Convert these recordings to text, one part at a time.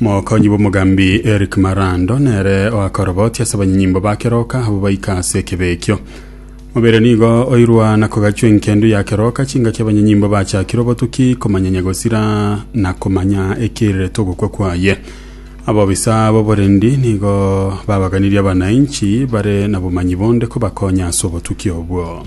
Mokonyi bw'omogambi Eric Marando nere oakorobotia ase abanyanyimbo ba keroka abwo baika ase ekebe ekio. Mobere nigo oirwa na kogachwa enkendu ya keroka, chingaki abanyanyimbo bachakire obotuki, komanyanya gosira na komanya ekirirete ogokwa kwaye. Abobisa b'oborendi nigo babaganirie abanainchi bare nabomanyi bonde kobakonya ase obotuki obwo.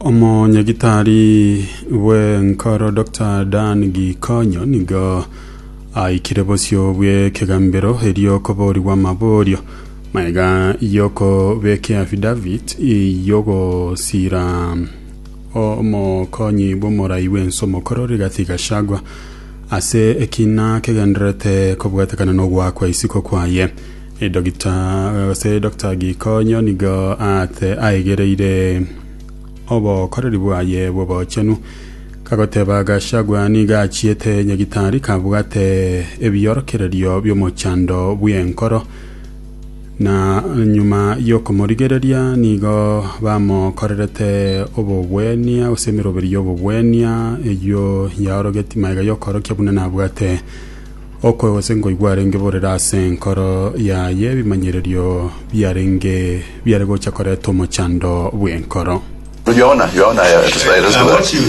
Omonyagitari bw'enkoro Dr. Dan Gikonyo nigo aikire bosio bw'ekegambero erio koborigwa amaborio maega y'okobeka affidavit y'ogosira omokonyi bw'omorai bw'ense omokoro Rigathi Gachagua ase ekina kegendererete kobwatekana n'ogoakwa isiko kwaye Edokita, gose edokita gikonyo nigo aate aegereire obokoreri bwaye bw'obochenu, kagoteba Gachagua nigo achiete nyagitari kabwate ebiorokererio bi'omochando bw'enkoro, na nyuma y'okomorigereria nigo bamokorerete obogwenia gose emeroberi y'obogwenia eyio yaorogetie magega y'okoorokia buna nabwate. Okwe gose nkoigwa arenge borere ase enkoro yaye, ebimanyererio biarenge biare gocha koreta omochando bw'enkoro. Yohana Omoebireso.